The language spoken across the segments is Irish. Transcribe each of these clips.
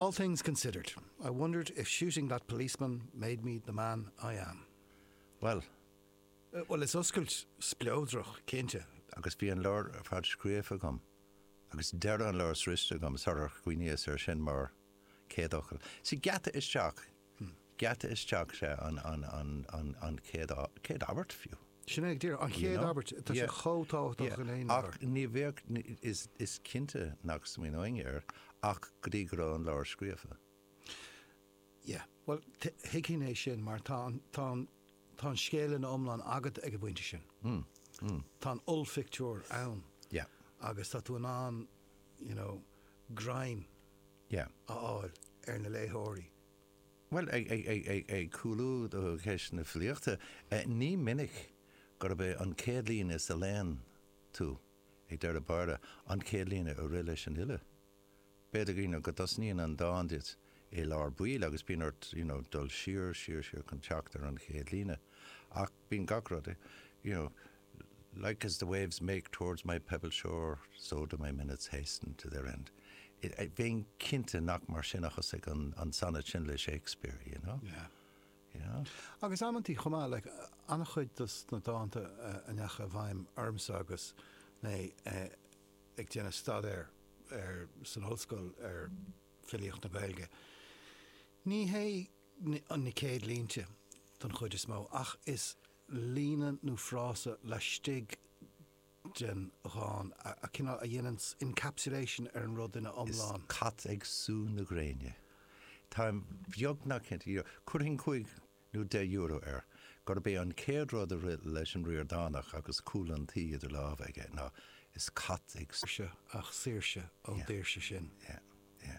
All things considered, I wondered if shooting that policeman made me the man I am. Bhuel. Bhuel, is oscailt spleodrach í, cinnte. Agus bhí an leabhar ar fad scríofa agam agus deireadh an leabhair sroichte agam sular chuimhníos air sin mar chéad fhocal sa gheata isteach. geata isteach, sea, an chéad abairt fiú. Sin é ag deireadh, an chéad abairt, tá sé chomh tábhachtach in aon leabhar. Ach ní bheadh, is cinnte nach smaoineoinnse air ach go dtí go raibh an leabhar scríofa. Yeah, bhuel, thuigfinn é sin mar tá an, tá an, tá an scéal ina iomlán agat ag an bpointe sin. Tá an ollphictiúr ann agus tá tú in ann, you know, greim. Yeah. a fháil ar na léitheoirí. Bhuel, ag cúlú go ceist na filíochta, ní minic gurb é an céad líne a léann tú ag deireadh báire an chéad líne a rith leis an fhile. B'fhéidir you know go dtosnaíonn an dán duit i lár baill agus bíonn ort you know dul siar, siar, siar chun teacht ar an chéad líne ach, bíonn gach rud you know Like as the waves make towards my pebbled shore so do my minutes hasten to their end Bheinn cinnte nach mar sin a thosaigh an an sonnet sin le Shakespeare you know yeah you know Agus amantaí chomh maith like an-chuid dos na dánta a ndeachaigh i bhfeidhm ormsa agus mé ag déanamh staidéir ar san ollscoil ar filíocht na Gaeilge ní hé na céad línte den chuid is mó, ach is líne nó frása laistigh den dán a cineál a dhéanann encapsulation ar an rud ina iomlán. Is cat ag sú na gréine. Táim beagnach cinnte, you know, chuirfinn cúig nó deich euro air, gurb é an chéad rud a rith leis an Ríordánach agus Cúl an Tí idir lámha aige ná Is cat ag. Saoirse, ach saoirse ón daoirse sin. Yeah, yeah.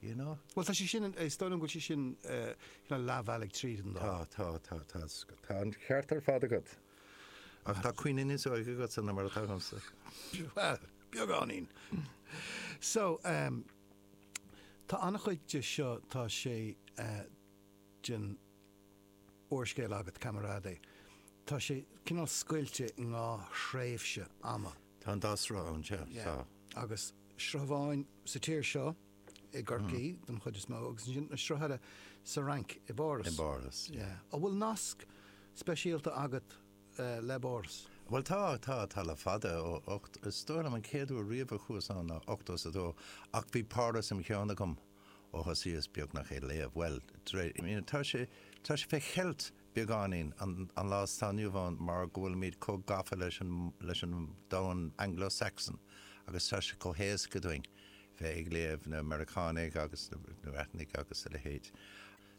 you know? Bhuel, tá sé sin, is dóigh liom go bhfuil sé sin cineál leathbhealaigh tríd an dán. Tá, tá, tá, tá, tá an ceart ar fad agat. Ach tá cuimhne níos óige agatsa ná mar atá agamsa. Bhuel, beagáinín. So, ehm, tá an-chuid de seo, tá sé den. úrscéal agat, Camarade, tá sé cineál scoilte i ndhá thréimhse ama. Tá an dá shruth ann, sea, tá. Agus sruth amháin sa tír seo, i gCorcaí don chuid is mó, agus ansin an sruth eile sa Fhrainc, i bPáras. I bPáras, yeah. An bhfuil nasc speisialta agat le Páras? Bhuel, tá, tá, tá le fada, ó ocht, is dóigh liom an chéad uair riamh a chuas ann ná ochtó is a dó, ach bhí Páras im' cheann agam. Ó thosaíos beagnach ag léamh, bhuel, de réir, I mean, tá sé, tá sé fé cheilt beagáinín an, an lá atá inniu ann mar go bhfuilimid chomh gafa leis an, leis an domhan Anglo-Saxon agus tá sé chomh héasca duinn bheith ag léamh na Meiriceánaigh agus na, na Breatanaigh agus a leithéid.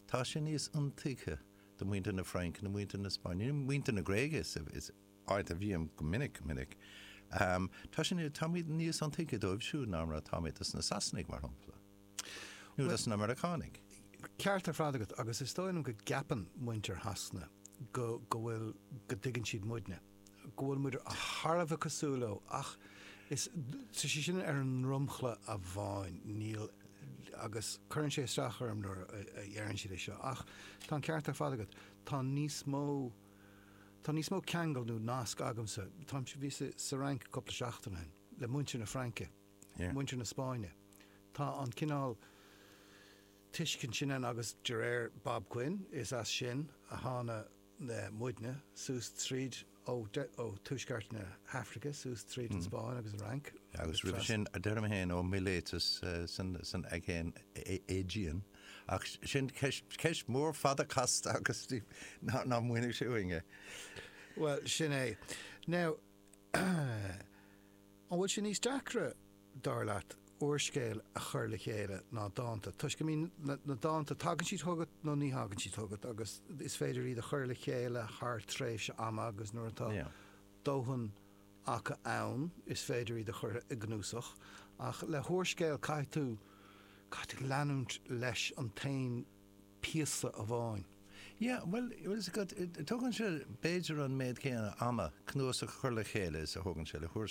Tá sé níos iontuigthe do mhuintir na Fraince, nó muintir na Spáinne, nó muintir na Gréige is, is, áit a bhím go minic, go minic, tá sé, táimid níos iontuigthe dóibh siúd ná mar atáimid dos na Sasanaigh, mar shampla, nó dos na Meiriceánaigh. Ceart ar fad agat, agus is dóigh liom go gceapann muintir Shasana go, go bhfuil, go dtuigeann siad muidne, go bhfuil muid thar a bheith cosúil leo ach is, tá sé sin ar an dromchla amháin, níl, agus cuireann sé isteach orm nuair a deireann siad é seo ach tá an ceart ar fad agat, tá níos mó. Tá níos mó ceangal nó nasc agamsa, táimse, bhíos sa Fhrainc cúpla seachtain ó shin, le muintir na Fraince, Yeah. muintir na Spáinne. Tá an cineál tuiscint sin ann agus de réir Bob Quinn, is as sin a tháinig muidne suas tríd ó de ó tuaisceart na hAfraice suas tríd an Spáinn agus an Fhrainc. Agus roimhe sin, deirim féin, ó Miléatas san san Aigéan Aegean. Ach sin ceist mhór fada casta agus ná múineadh sé uainn é. Bhuel, sin é. Now, an bhfuil sé níos deacra, dar leat, úrscéal a chur le chéile ná dánta? Toisc, I mean, na dánta, tagann siad chugat nó ní thagann siad chugat agus is féidir iad a chur le chéile thar tréimhse ama agus nuair atá dóthain acu ann, is féidir iad a chur i gcnuasach, ach le húrscéal caithfidh tú, caithfidh tú leanúint leis an t-aon phíosa amháin. Yeah, bhuel, tógann sé b'fhéidir an méid céanna ama cnuasach a chur le chéile is a thógann sé le